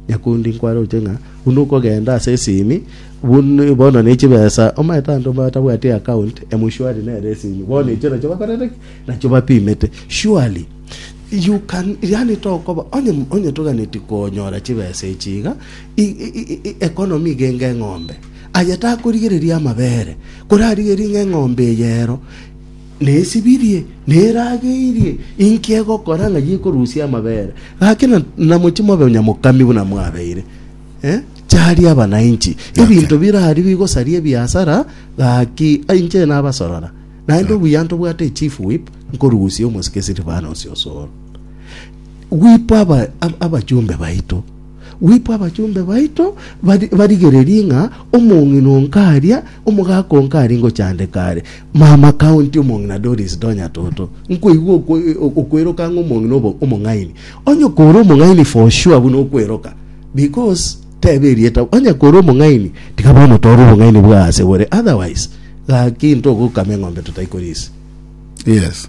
Nyakundi nkwaroche ng'a buna okogenda ase esimi bun- bono ne chibesa, omanyete abanto batabwati eaccount emshwari nere esimi bono echio nachio bakorete ki? nachio bapimete surely you can yaani tokoba onye onye toganetie konyora chibesa echi iga i- i- i- i- economy iga enge eng'ombe aye takorigereria amabere korarigerie ng'a eng'ombe eye ero Nesibirie, nerageirie, inki egokora ng'a yekorusia amabere? Gaki namochie mobe onyamokami buna mwabeire. Charia abana inchi, ebinto biraria bigosaria ebiasara, gaki inche nabasorora, naende obuya ntobwate echief whip, nkorusia omosike Silvanus osoro. Whip aba abachumbe baito. Gwikwa abachomba baito barigererie ng'a omong'ina o nkaria, omogaka o nkari ngochandeka are. Mama County omong'ina Doris do nyatoto. Nkoigwa okweroka ng'a omong'ina obo omong'aini. Onye okore omong'aini for sure buna okweroka because tebe erieta. Onye kore omong'aini tiga bono tore obong'aini bwa ase bore otherwise gaki intogokama eng'ombe totari korisia. Yes.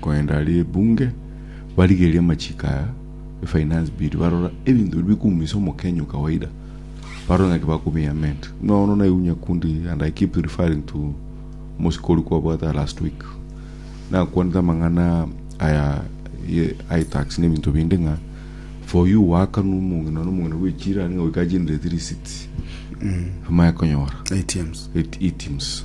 Kogenda ribunge barigerie amachiko aya e finance bill barora ebinto biri bikuumisa omokenya o kawaida barore ng'aki bakobi amend buna bono naibu nyakundi and i keep referring to omosiko oria kwabwata last week nakwanete amang'ana aya ye itax na ebinto binde ng'a for you wakanu omong'ina nonye omong'ina bwechira niga goika agenereti receipt amanye konyora ATMs. it- items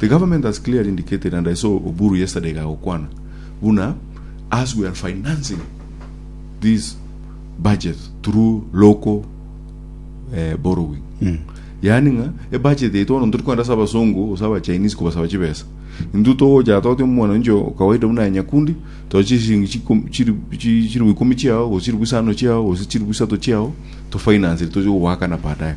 The government has clearly indicated and I saw Oburu yesterday kagokwana buna as we are financing this budget through local eh, borrowing yaani ng'a ebudget yaito bono tori kwenda ase abasongo ase abachinese kobasaba chibesa intwe togocha toti omwananchi o kawaida buna ya nyakundi to chisiringi chikum- chiri- chi- chiribu ikomi chiao gose chiribu isano chiao gose chiribu isato chiao tofinance toche gogoakana baadaye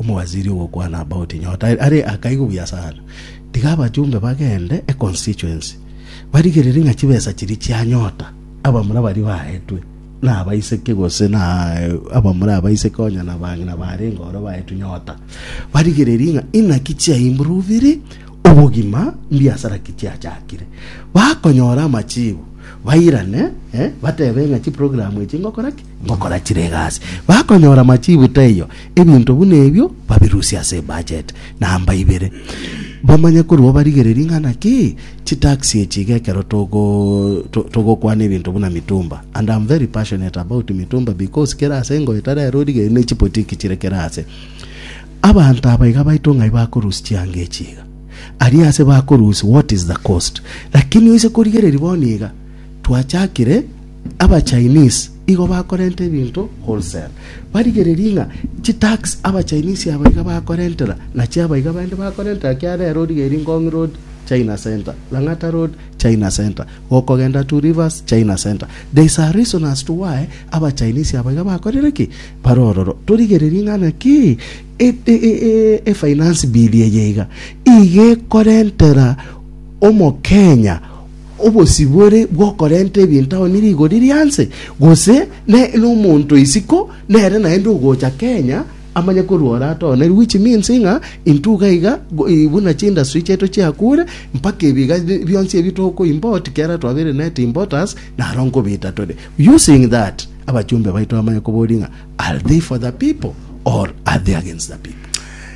Omowaziri ogokwana about nyota are akaigwe buya sana. Tiga abachumbe bagende e constituency barigerere ng'a chibesa chiria chia nyota abamura baria baetwe na abaiseke gose na abamura abaiseke onya na bang'ina barenge oro baetwe nyota barigererie ng'a inaki chia improviri obogima mbiasara ki chiachakire bakonyora amachibu bairane eh, batebe ng'a chiprogram echi ngokora ki ngokora chire egasi, bakonyora machiibu taiyo, ebinto buna ebio babirusie ase budget namba ibere. Bamanye korwa obarigererie ng'a naki chitax echi iga ekero togo to- togokwana ebinto buna mitumba. And am very passionate about mitumba because kere ase engoeta rero origererie ne chipotiki chire kere ase. Abanto aba iga baito ng'ai bakorusia chianga echi iga. Aria ase bakorusia what is the cost. Lakini oise korigereria bono iga twachakire Abachinese igo bakorenta ebinto wholesale, barigererie ng'a chitax abachinese aba iga bakorentera nachio aba iga baende bakorentera kiagera ere origereiri Ngong road China center, Lang'ata road China center, gokogenda Two Rivers China center. There is a reason as to why abachinese aba iga bakorire ki? Bare ororo. Torigererie ng'a naki efinance bill eye iga iga ekorentera omokenya obosibore bw'okorenta ebinto ao ne rigori ria nse, gose nere nomonto isiko nere naende ogocha Kenya amanye korwa oratonerwe which means ng'a intwe iga iga buna chindustry chiaito chiakure mpaka ebiga bionsi ebi toko import kiara twabere net importers naro nkobita tore using that abachumbe baito bamanye kobori ng'a are they for the people or are they against the people.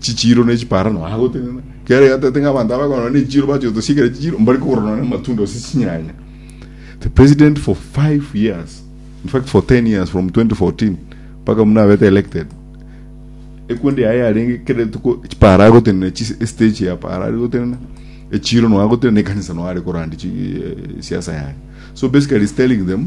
chichiiro ne chiparano aa gotenena kera egatete ng'a abanto abakorora ne chichiiro bache gotosiekera chichiiro mbari kogora nonye amatunda gose chinyanya the president for five years in fact for 10 years from 2014 mpaka muna abete elected ekundi yaye yarenge kera etuko chipara agotenena chis- estage ya para ari gotenena echiro no agotenena ekanisa no are korandi chi- eh, siasa yaye so basically he's telling them